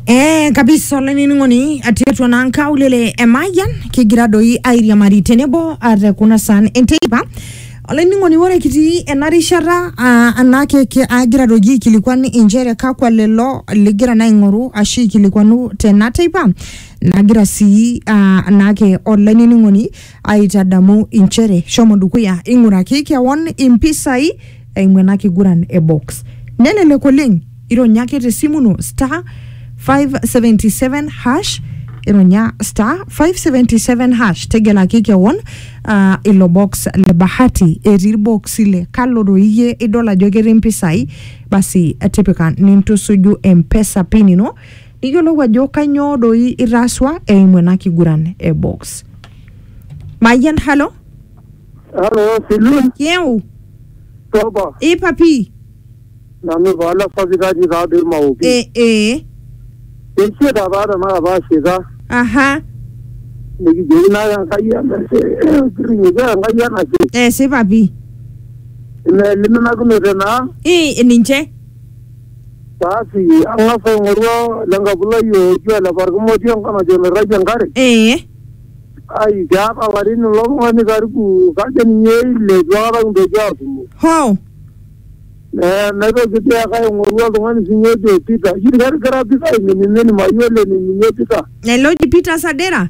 Eh, kabisa olainining'oni atii atua naa nkaulele e Mayian kigira doi airiamari tenebo ate kuna saan enteipa olainining'oni ore kitii ena rishata ah, anake ki- agira doji aikilikuan inchere kakwa lelo ligira naa aing'oru ashu aikilikuanu tena teipa nagira sii ah, anake olainining'oni Aitadamu inchere shomo dukuya ing'uraki kewon impisai eimu ena kiguran e box. Nelelek oleng, ironya ake te simu ino star 577 hash ironya star 577 hash tegelaki kewon ah, ilo box le bahati etii irboksi le kalo doi iyie idol ajo ketii impisai basi tipika nintusuju mpesa pin ino iyiolou ajo kanyoo doi itaasua eimu ena kiguran e box mayian halo Halo, Silun, kieu toba, ipapi nanu paala sapitati taadoi maoki. e e Eisiet apa tanakata ashika, aha nikijoki naa Enkai enashe, kirrinyoki Enkai enashe, esipa pi ina eliminakinote naa. i ninche Basi ang'as aing'oru le nkabulai oji ole Parkimoti enkop najo emirrayie enkare. ee Ai keeta larin ilo tung'ani karibu kajo ninye ile itu aikata kintoki aatumo. hoo Ne- Naitoki dii ake aing'oru oltung'ani sinye ojo Peter. Ijo ketigila Peter aiminimin mayiolo enining'ie Peter. ele oji Peter Sadera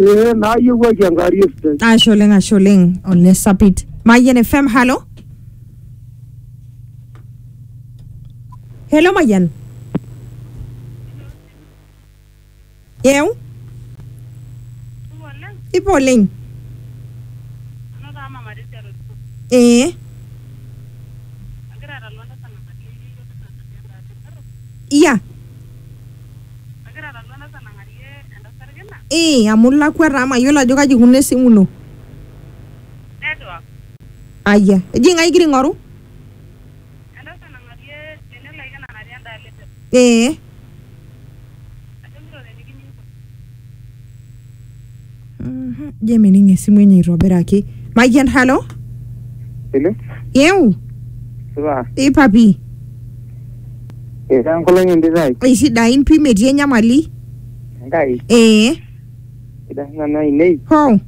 Eh, naayiewuaki enkarie sidai. ashe oleng ashe oleng ole sapit mayian fm halo helo mayian eu ipo oleng ee iya Ee, amu ilakwa taa mayiolo ajo kaji ikununo esimu ino. Ayia, eji ng'ae igira aing'oru? Ee. Je, mening esimu enye aitobiraki. Mayian, halo. Hello? Yeu, Supa. ipapi. Etaa enkolong entitai. Aisidain pi metii enyamali. Enkai. Ee, Sidan nanu ainei. hoo.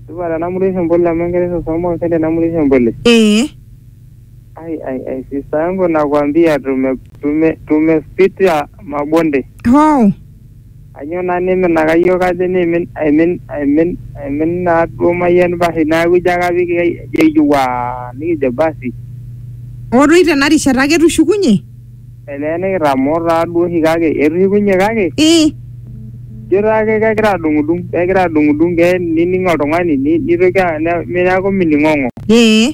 Supa tenamurisho mbole amu enkerai sosomo olsende tenamurisho mbole. Ee, Ai ai ai sister yangu nakwambia tume tume tumepitia mabonde. hoo. Kanyoo naa niminaka iyiook ajo niimin aimin aimin aimin naa duo mayian basi neaku ijo ake apik ejo waa nikijo basi. Hoo doi tena rishata ake etushukunye? Elee nikitamoo taa duo oshi kake etushukunye kake. Ii. Ijo taake kegira adung'udung kegira adung'udung kee nining oltung'ani nitoki neaku mining'ong'o. Ee.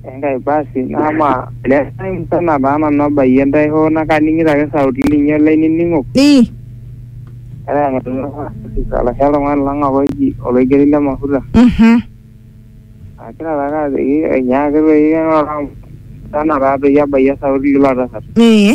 Enkai basi naamaa ele tai musana taa nanu abayie ntae hoo naa kaning'ito ake sauti linyi olainining'ok. Ii. Etaa eng'atunyo Francis olashe oltung'ani lang apa oji Oloigeri le Mafuta. Mhm. Agira taake ajoki enyaaki toi eng'oro amu musana taa toi abayie esauti ilo tasat. Ee.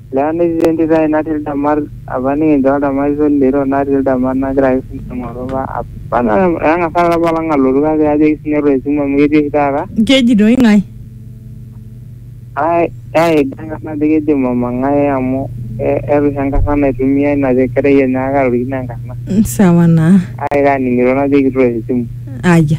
Lewa netii entito ai natii ildamat apa nikincho oldamat ito lito natii ildamat nagira ake sinanu aing'oru apa apa etang'asa taata apa olong alotu kake ajoki sinye ore esimu amu ketii oshi taata Keji doi ng'ae? ai ai dang'an najo keji mama ng'ae amu e- eeta oshi enkarna naitumiai ina te- kerai enye kake atorikine enkarna Mm, Sawa naa. kake kaning'ito najoki itoosho esimu Aya.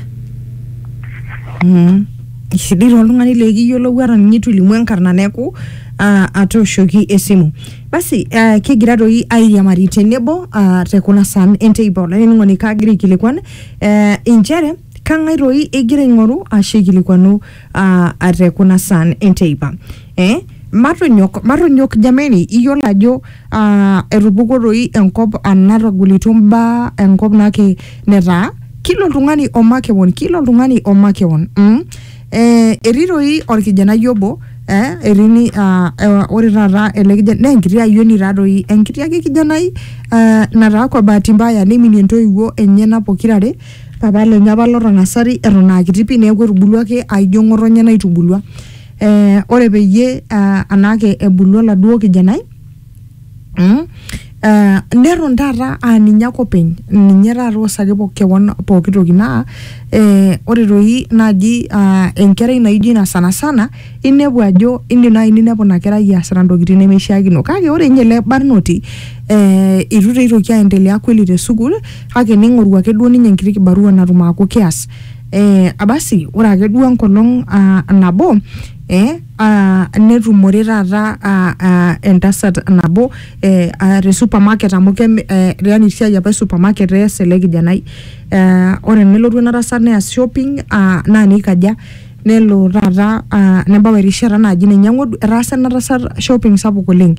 Mm. Kesidai toltung'ani likiyiolou ata ninye itu ilimu enkarna neeku ah, atooshoki esimu. Basi ah, kigira doi airiamari tenebo ah, te kuna saan enteipa olainining'oni kaagira aikilikuan eh, inchere kang'ae doi igira aing'oru ashu aikilikuanu ah, te kuna saan enteipa. Eh, Matonyok, matonyok jameni, iyiolo ajo ah, etupukuo doi enkop anatagolito mbaa enkop nake netaa kila oltung'ani omakewon, kila oltung'ani omakewon. Mm? Eh, etii doi orkijanai obo eh, etii ni, ah, eh, ore taata ele kijanai naa enkiti ayioni taa doi, enkiti ake kijanai ah, nataa kwa bahati mbaya neiminie ntoiwuo enyena pokira are, papa lenye apa lotang'asari eton akiti pi neeku etubulua ake aijo ng'otonye naitubulua. eh, ore peyie uh, anaake ebulu oladuo kijanai mm, Uh, neton taata aa ninye ake openy ninye taata osaki po- kewon pooki toki naa eh, ore toi naaji uh, enkerai naijo ina sanasana inepu ajo indim naaji ninepu ina kerai easita ntokitin nemeishiakino kake ore ninye ele barnoti eh, itu taa eitoki aendelea kweli te sukuul kake ning'oru ake duo ninye enkiti kibarua natum aaku keas Eh, abasi ore ake duo enkolong ah, nabo eh, ah, netumore taata ah, ah, entasat nabo eh, ah, te supermarket amu kem, eh, yani esiai apa e supermarket ees ele kijanai eh, ore nelotu ena tasat neas shopping ah, naa neikaja nelo taata ah, nebau erishata naji ninye eng'odu etaasa ena tasat shopping sapuk oleng.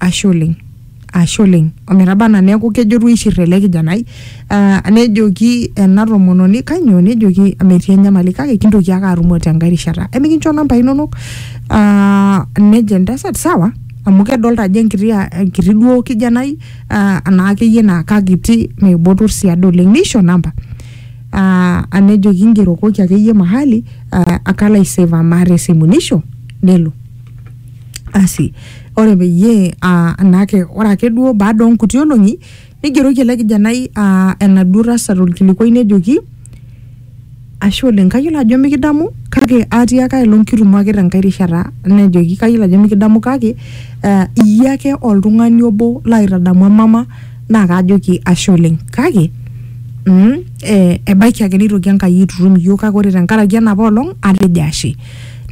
ashe oleng ashe oleng ometaba anaa neeku kejo duo aishir ele kijanai ah, nejoki ena tomononi kanyoo nejoki metii enyamali kake kintoki ake atumo tenkae rishata emikincho nambai inonok ah, nejo entasat sawa amu kedolta ajo enkiti ah, enkiti duo kijanai ah, anaa akeyie naa kakiti meibotor sii ade oleng neisho namba ah, nejoki ingerokoki akeyie mahali ah, kalo aiseva maa tesimu nisho nelo asi ore peyie uh, naake ore ake duo baada onkuti olong'i nigeroki ele kijanai uh, enaduo tasat olkilikuai nejoki ashe oleng kayiolo ajo mikidamu kake atiaka aelong kitumo ake tenkae rishata nejoki kayiolo ajo mikidamu kake uh, iyie ake oltung'ani obo laitadamu emama naa kaajoki ashe oleng kake mm, eh, ebaiki ake neitoki enkai aitutum iyiok kake ore tenkaraki enapa olong atejo ashe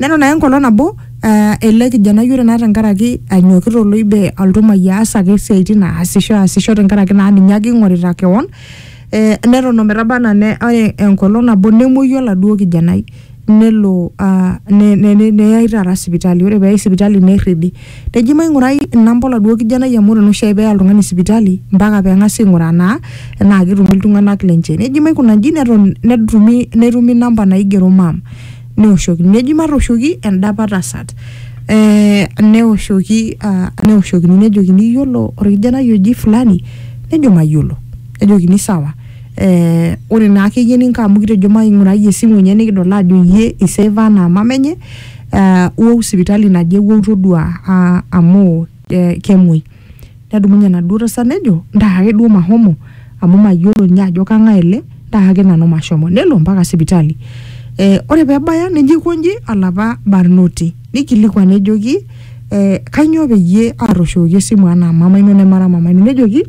neton ake enkolong nabo uh, ele kijanai ore naa tenkaraki anyokita oloibe altumai aas ake isiaitin aasisho aasisho tenkaraki naa ninye ake ing'orita kewon eh, neton ometaba anaa ne ore enkolong nabo nemuoyu oladuo kijanai nelo uh, ne, ne, ne, neyai taata sipitali ore peyai sipitali nerridi neji maing'urai inamba oladuo kijanai amu ore naa oshiake peya oltung'ani sipitali mpaka peng'asi aing'uraa naa enaa ketumi iltung'anak lenche neji maikuna inji neton netumi netumi inamba naigero mam neoshoki neji matooshoki endapa tasat eh, neoshoki ah, neoshokini nejokini iyiolo orkijanai oji fulani nejo mayiolo nejokini sawa eh, ore naa akeyie ninko amu kitejo maing'urai esimu enye nikidol ajo iyie iseva anaa mama enye eh, wou sipitali naje wou todua ah, amu eh, kemuoi Nedumunye enaduo tasat nejo ntaa ake duo mahomo amu mayiolo ninye ajo kang'ae ele ntaa ake nanu mashomo nelo mpaka sipitali eh, ore pebaya nejo aikonji olapa barnoti nikilikuan nejoki eh, kanyoo peyie atooshoki esimu anaa mama ino nemara mama ino nejoki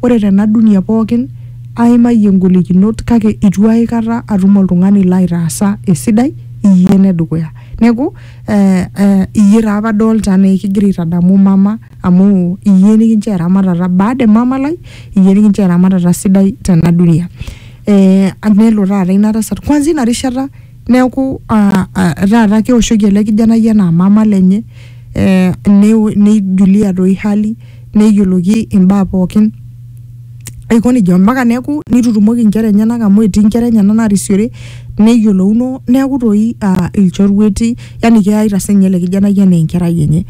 ore tena dunia pookin aimayie ingolikinot kake itu aikata atum oltung'ani laitaasa esidai iyie enedukuya neku eh, eh, iyie taa apa adolta anaa ekigira aitadamu mama. amu iyie nikincho eramatata baada e mama lai iyie nikincho eramatata sidai tena dunia eh, nelo taata ina tasat kwanza ina rishata neeku ah, ah, taata keoshoki ele kijanai enaa mama lenye eh, neo- neijulia doi hali neyioloki imbaa pookin aiko nejia ompaka neeku nitutumoki inkera enyenak amu etii inkera enyenak narisiore neyiolouno neeku toi uh, ilchorueti yani keyaita sinye ele kijanai enaa enkerai enye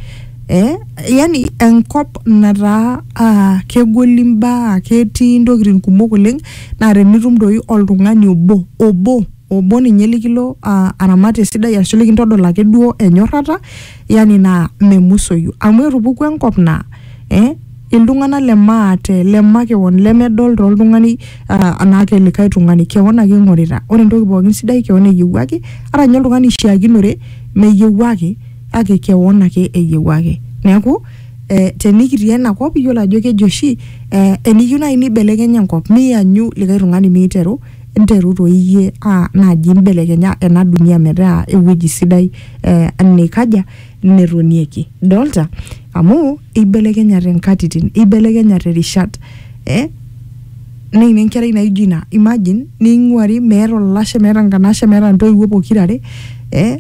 eh, yani enkop nataa ah, kegoli mbaa ketii ntokitin kumok oleng naa tenitum doi oltung'ani obo obo obo ninye likilo ah, aramat esidai ashu likintodol ake duo enyorrata yani naa memusoyu amu etupuku enkop naa eh, iltung'anak le maate le makewon lemedol toltung'ani ah, anaa kelikae tung'ani kewon ake ing'orita ore entoki pookin sidai kewon eyiewuaki ata ninye oltung'ani oishiakinore meyiewuaki ake kewon ake eyieu ake neeku eh, tenikitii ena kop iyiolo ajo keji oshi eh, eniyieu naaji nibelekenya enkop miyanyu likae tung'ani miteru nteru toi iyie ah, naaji imbelekenya ena dunia metaa ewueji sidai eh, nikaja netonieki idolta amu ibelekenyate inkatitin ibelekenyate irishat eh, neini enkerai naijo ina imagine ning'uari meeta olashe meeta nkanashe meeta ntoiwuo pokirare eh,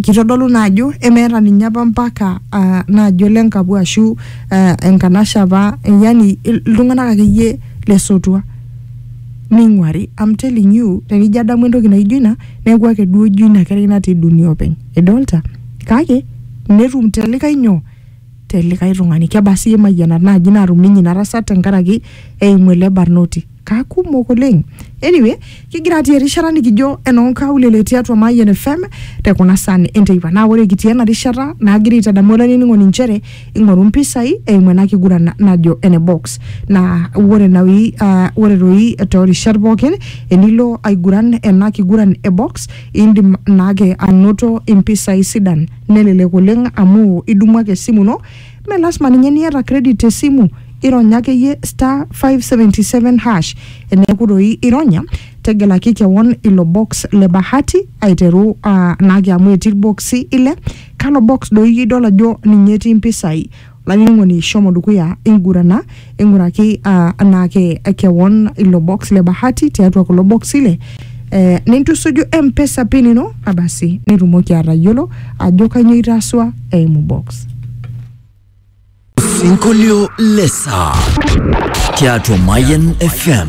kitodolu naa ajo emeeta ninye apa mpaka ah, naajo le nkapu ashu ah, enkanashe apa eh, yani il- iltung'anak akeyie lesotua ning'uari I'm telling you tenijo adamu entoki naijo ina neeku ake duo ijo ina kerai natii dunia openy idolta kake netum te likae nyoo te likae tung'ani kebaa sii imayianat naaji naatum ninye ina tasat tenkaraki eimu ele barnoti kakumok oleng anyway kigira atii erishata nikijo enoonkaulele tiatua Mayian FM te kuna san enteipa naa ore kitii ena rishata naagira aitadamu olainining'oni nchere ing'oru mpisai eimu ena kiguran najo ene box naa ore naoi ah, ore toi toorishat pookin enilo aiguran ena kiguran e box indim naake anoto impisai sidan Nelelek oleng amu idumu ake esimu ino, mme lasima ninye niata credit te simu, irony akeyie *577#. Eneeku doi ironya, tegelaki kewon ilo box le bahati aiteru naake amu etii ilboksi ile, kalo box doi idol ajo ninye etii mpisai. Lainyiang'oni shomo dukuya ingurana, ing'uraki uh, anaake kewon ilo box le bahati tiatua kulo boksi ile eh, nintusuju mpesa pin ino abasi nitumoki atayiolo ajo kanyoo itaasua eimu box. Sinkolio Lesa tiatua Mayan FM.